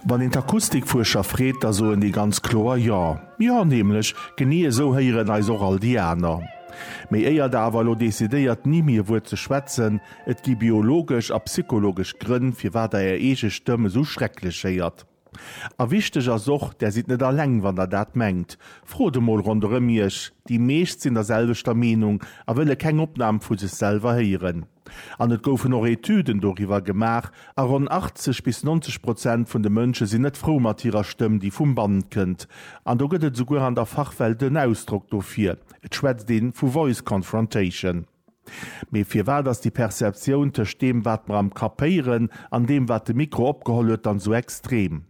Wann een d'Akustikfuerscher freet, da soen déi ganz kloer Jo. Jo, nämlech genee esou héieren eis och all déi aner. Méi éier der awer elo decidéiert, ni mir Wuert ze schwätzen, et gi biologesch a psychologesch Grënn, firwat der är eege Stëmm esou schrecklech héiert. A wichteg ass och, Där sidd net alleng, wann der dat mengt. Frot emol ronderëm iech, déi meescht sinn der selwechter Meenung a wëlle keng Opnam vu sech selwer héieren. An et goufen och Etüden doriwwer gemaach, a ronn 80 bis 90 Prozent vun de Mënsche sinn net frou mat hirer Stëmm, déi vum Band kënnt. An do gëtt et esouguer an der Fachwelt en Ausdrock dofir, et schwätzt ee vu Voice Confrontation. Mee firwat ass déi Perceptioun tëscht deem, wat mer am Kapp héieren, an deem, wat de Mikro opgeholl huet, dann esou extrem?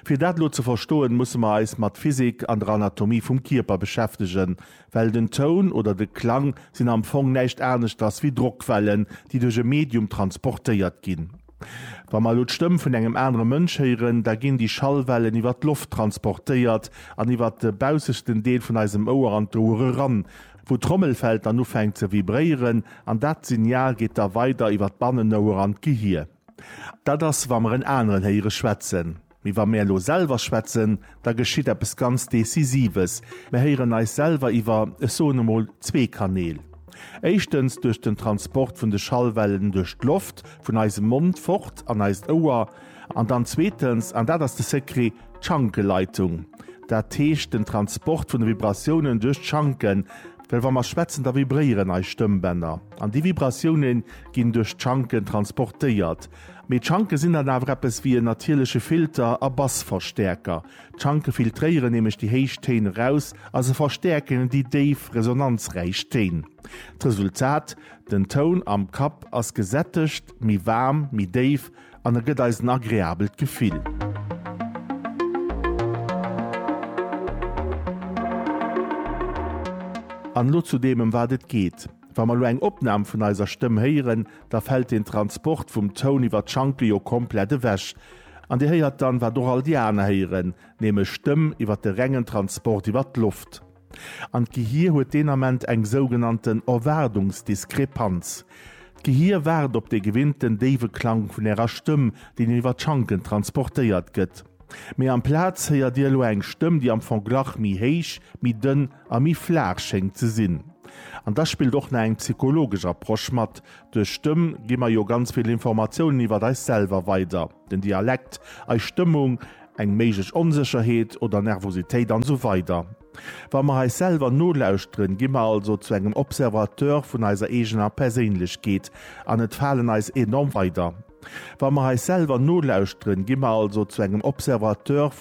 Fir dat elo ze verstoen, musse mer eis mat Physik an der Anatomie vum Kierper beschäftegen, well den Toun oder de Klang sinn am Fong näischt aneschters wéi Drockwellen, déi duerch e Medium transportéiert ginn. Wa mer elo d'Stëmm vun engem anere Mënsch héieren, da ginn déi Schallwellen iwwer d'Loft transportéiert an iwwer de baussechten Deel vun eisem Ouer an d'Ouer eran, wou d'Trommelfell dann ufänkt ze vibréieren, an dat Signal geet da weider iwwer d'Bannenouer an d'Gehir. Dat ass, wa mer en aneren héiere schwätzen. Mee wa mär elo selwer schwätzen, da geschitt eppes ganz Decisives, Mär héieren eis selwer iwwer, ech soen emol, zwee Kanäl. Éischtens duerch den Transport vun de Schallwellen duerch d'Loft, vun eisem Mond fort an eist Ouer. An dann zweetens, an dat ass de Secret, d'Schankeleitung. Dat heescht den Transport vun de Vibratiounen duerch d'Schanken. Well wa mer schwätzen, da vibréieren eis Stëmmbänner. An déi Vibratiounen, ginn duerch d'Schanken transportéiert. Mee d'Schanke sinn dann awer eppes wéi en natierleche Filter a Bassverstäerker. D'Schanke filtréieren nämlech déi héich Téin eraus a se verstäerken déi déif, resonanzräich Téin. D'Resultat, Den Toun am Kapp ass gesättegt, méi waarm, méi déif an e gëtt eis en agreabelt Gefill. An elo zu deem, ëm wat et geet. Wa mer elo eng Opnam vun eiser Stëmm héieren, da fält den Transport vum Toun iwwer d'Schanke jo komplett ewech. An Dir héiert dann, wat och all déi aner héieren, nämlech d'Stëmm iwwer de rengen Transport iwwer d'Loft. An d'Gehir huet deen Ament eng sougenannten Erwaardungsdiskrepanz. D'Gehir waart op dee gewinnten déiwe Klang vun Ärer Stëmm, deen jo iwwer d'Schanken transportéiert gëtt. Mee amplaz héiert Dir elo eng Stëmm, déi am Fong glach méi héich, méi dënn, a méi flaach schéngt ze sinn. An da spillt och nach eng psychologesch Approche mat, duerch Stëmm gi mer jo ganz vill Informatiounen iwwer eis selwer weider, den Dialekt, eis Stëmmung, eng méiglech Onsécherheet oder Nervositéit an esou weider. Wa mer eis selwer nolauschteren, gi mer also zu engem Observateur vun eiser eegener Perséinlechkeet an et falen eis enorm weider Wa mer eis selwer nolauschteren, gi mer also zu engem Observateur vun